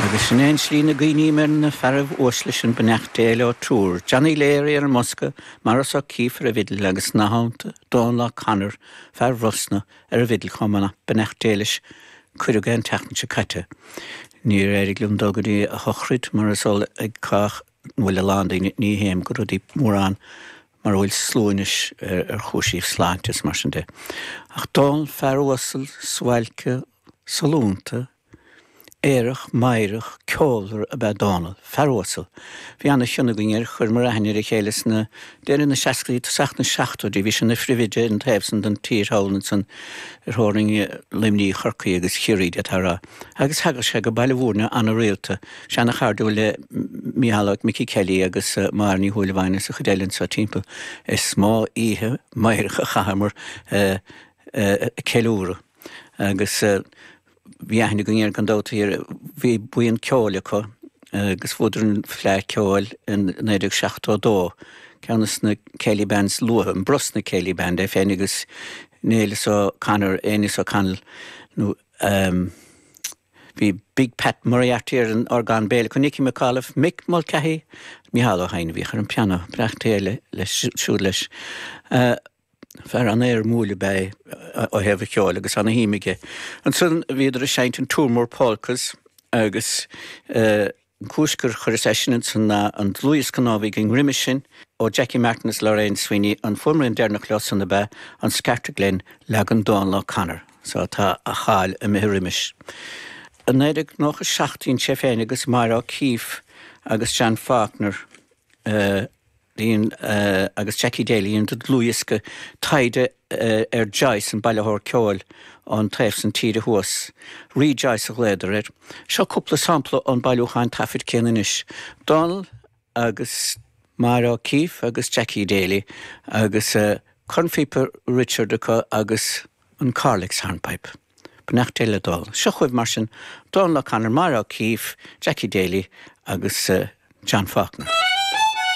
Agus sin é an slí ina gcuimhním ar na fearaibh uaisle sin beannacht Dé leo triúr, Johnny Leary ar an mbosca, Maurice O'Keeffe ar an bhfidil agus nathannta Dónal O'Connor, fear Bhrosna, ar an bhfidil chomh maith nach beannacht Dé leis cuireadh é an tseachtain seo caite. Níor éirigh liom dul go dtí a shochraid mar is eol ag cách. bhfuil a lán daoine, ní théim go rudaí mórán mar a bhfuil slua anois ar chúisibh sláinte is mar sin de. Ach Dónall fear uasal, suáilce, sollúnta, aerach, meidhreach, ceolmhar ab ea Dónall. Fear uasal. Bhí ana chion againn air, chuireamar aithne ar a chéile sna Deireadh na seascaidí, tosach na seachtóidí, bhí sé ina phriomhoide ar an taobh san den tír thall ansan ar theorainn Luimnigh, Chorcaí agus Chiarraí, d'fhéadfá a rá, agus thagadh sé go Baile Mhúirne ana-rialta. Bhí sé ana-chairdiúil le Micheál Micí Kelly agus Máire Ní Shúilleabháin is an chuid eile anso timpeall. Is mó oíche mheidhreach a chaitheamar ag ceiliúradh agus. Bhí aithne againn air gan dabht. Bhí buíon ceoil acu agus bhuadar an Fleadh Ceoil in 1972, ceann de na Céilí Bands luatha, an Brosna Céilí Band, é féin agus Neilus O'Connor, Aeneas O'Connell nó ehm bhí Big Pat Moriarty ar an orgán béil acu, Nicky McAuliffe, Mick Mulcahy, Micheál Ó hEidhin a bhíodh ar an pianó, beannacht Dé leis siúd leis. Eh. Fear ana éirimiúil ab ea é ó thaobh a cheoil agus ana shuim aige. Ansan bhíodar ag seinnt an Toormore Polkas agus an cúis gur chuireas eisean ansan ná an dlúthdhiosca nua a bhí againn roimis sin ó Jackie Martin is Lorraine Sweeney, an fuaimrian deireanach leo san ab ea an Scartaglen, leagan Dónal O'Connor. So tá a cháil imithe roimis. I 1997 dhein sé féin agus Máire O'Keefe agus John Faulkner a. Lean agus Jackie Daly an dlúthdhiosca taighde ar Joyce, an bailitheoir ceoil ón taobh san tíre thuas. Re-Joyce a ghlaodar air. Seo cúpla sampla ón bailiúchán taifid céanna anois. Dónal agus Máire O'Keefe agus Jackie Daly agus cornphíopa Richard acu agus an Corrlex hornpipe. Beannacht Dé le Dónal. Seo chugaibh mar sin Dónal O'Connor, Máire O'Keefe, Jackie Daly agus John Faulkner.